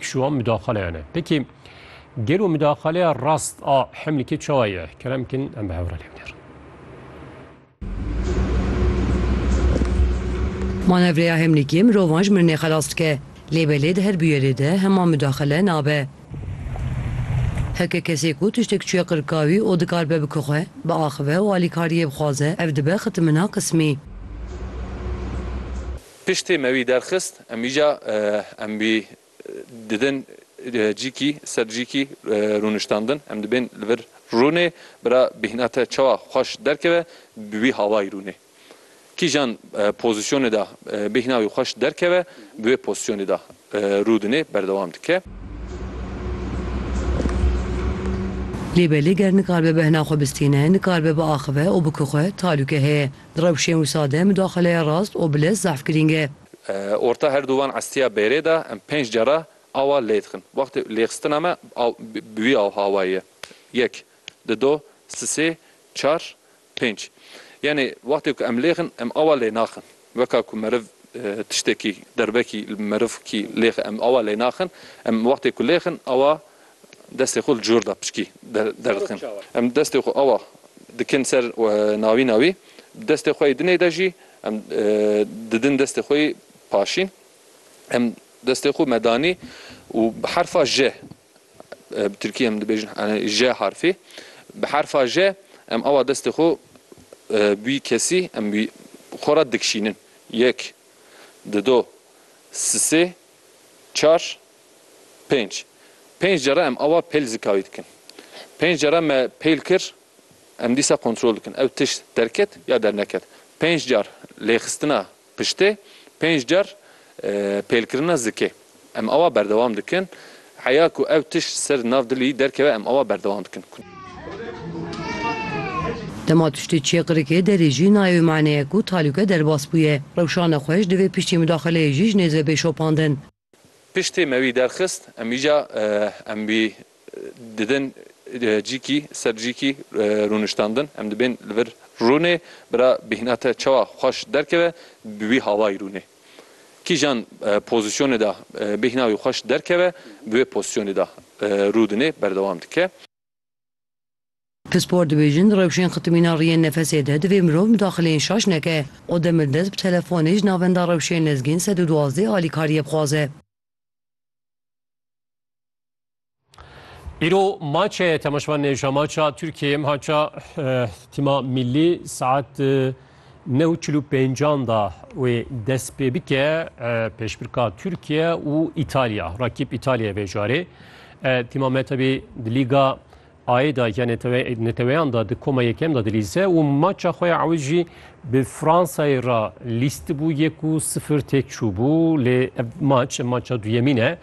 Şiwan mudaxaleyan e. Peki gelo mudaxaleya rast a Hemlikê çawa ye? Kerem bikin em bi hev re lê bigerin. Manevreya Hemlikê mirovan ji mirinê xelas dike. Lê belê di her bûyerê de hema mudaxale nabe. Heke kesê ku tiştek çûye qirka wî û dikar be bike xwe, biaxive û alîkariyê bixwaze ev dibe xitimina qismî. Piştî me wî derxist, em îca em wî didin cîkî ser cîkî rûniştandin. Em dibên li vir rûnê, bira bêhna te çawa xweş derkeve bi wî havayî rûnê. Kîjan pozîsyonê de bêhna wî xweş derkeve bi wê pozîsyonê de rû dinê, berdewam dike. Lê belê ger nikaribe behna xwe bistîne, nikaribe biaxive û bikixwe, talûke heye. Di rewşên wisa de mudaxaleya rast û bilez zehf girîng e. Orta her du van estiya bêrê de em pênc cara awa lê dixin. Wextê lêxistina me bi wî awayî ye. Yek, di do, si sê, çar, pênc. Yanî wextê ku em lê dixin em awa lê naxin. Weka ku meriv tiştekî derbekî li merivkî lê dixe em awa lê naxin. Em wextê ku lê dixin awa Destê xwe li cor da piçkî derdikin. Em destê xwe awa dikin ser navîna wî, bi destê xwe yê dinê de jî em didin destê xwe yê paşîn. Em destê xwe me danî û bi herfa J, bi tirkî em dibêjin J harfê, bi herfa J em awa destê xwe bi wî kesî em wî xwe re dikişînin. Yek, dido, sisê, çar, Pênc. Pênc cara em awa pêl zikawî dikin. Pênc cara me pêl kir, em dîsa kontrol dikin ew tişt derket ya derneket. Pênc car lêxistina piştê, pênc car pêlkirina zikê. Em awa berdewam dikin. Heya ku ew tişt ser nav dilî derkeve em awa berdewam dikin. Dema tiştê çê qirikê derê jî nayê wê maneyê ku talûke derbas bûye. Rewşana xweş divê piştî mudaxileyê jî ji nêzê bê şopandin. Piştî me wî derxist, em îca em wî didin cîkî ser cîkî rûniştandin. Em dibên li vir rûnê, bira bêhna te çawa xweş derkeve bi wî hawayî rûnê. Kîjan pozîsyonê de bêhna wî xweş derkeve bi wê pozîsyonê de rûdinê, berdewam dike. Pispor dibêjin, rewşên xitimîna riyên nefesê de divê mirov midaxileyên şaş neke û demir dest bi telefonê ji navenda rewşên lezgên sed û duwazdeh alîkariyê bixwaze. Îro maçe temeşvanê jamaça Tirkiyê maça Tima Millî saet Neh û çil û pêncan de wê dest pê bike pêşbirka Tirkiye û Îtalya. Rakîb Îtalyayê vê carê Tîma Metebî di Lîga Ayê de ya neteweyan de di koma yekem de dilîze û maça xwe ya ewil jî bi Fransayê re lîstibû yek û sifir têk çûbû lê ev maç em maça duyemîn e.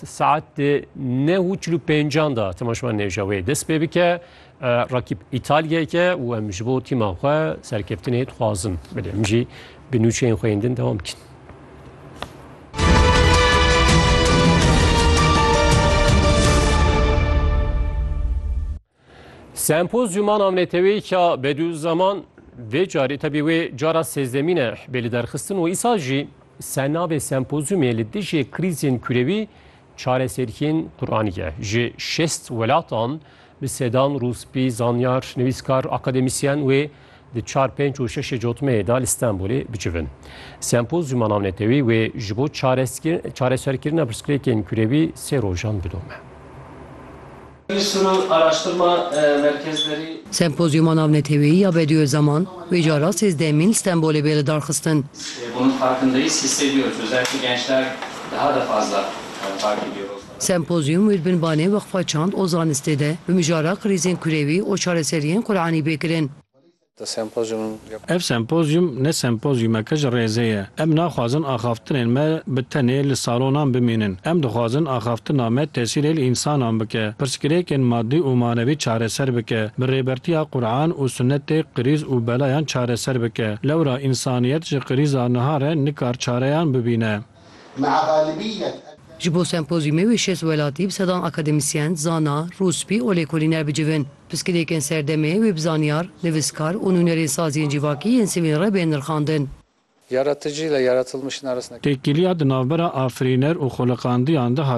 Saet neh û çil û pêncan de temaşevan nêje wê dest pê bike. Rakîb Îtalyayê ye û em ji bo tîma xwe serkeftinê dixwazin. Belê em jî bi nûçeyên xwe yên din dewam dikin. Sempozyûma navneteweyî ya Bedûzeman vê carê tevî wê cara sêzdemîn e bê li derxistin û îsal jî sernavê sempozyûmê li dijî krîzên kurewî çareseriyên Quranî ye. Ji şêst welatan Bi sedan rûspî, zanyar, nivîskar, akademîsyen wê di çar, pênc û şeşê cotmeyê de li Stenbolê bicivin. Sempozyûma navnetewî wê ji bo çareserkirina pirsgirêkên kurewî sê rojan bidome. Sempozyûma navnetewî ya Bediyo Zaman wê cara sêzdehemîn li Stenbolê bê lidarxistin. Sempozyum wî li bin banê Weqfa Çand û Zanistê de bi mijara krîzên kurewî û çareseriyên Quranî bê kirin. Ev sempozyum ne sempozyumeke ji rêzê ye. Em naxwazin axaftinên me bi tenê li salonan bimînin. Em dixwazin axaftina me tesîrê li însanan bike, pirsgirêkên madî û manevî çareser bike, bi rêbertiya Quran û Sunnetê krîz û belayan çareser bike. Lewra însaniyet ji krîza niha re nikar çareyan bibîne. Ji bo sempozyûmê wê şêst welatî bi sedan akademîsyen, zana, rûspî û lêkolîner bicivin. Piskilêkên serdemê wê bi zanyar, nivîskar û nûnerên saziyên civakî yên sivên re bên nirxandin. Têkiliya di navbera afirîner û xweliqandiyan de hat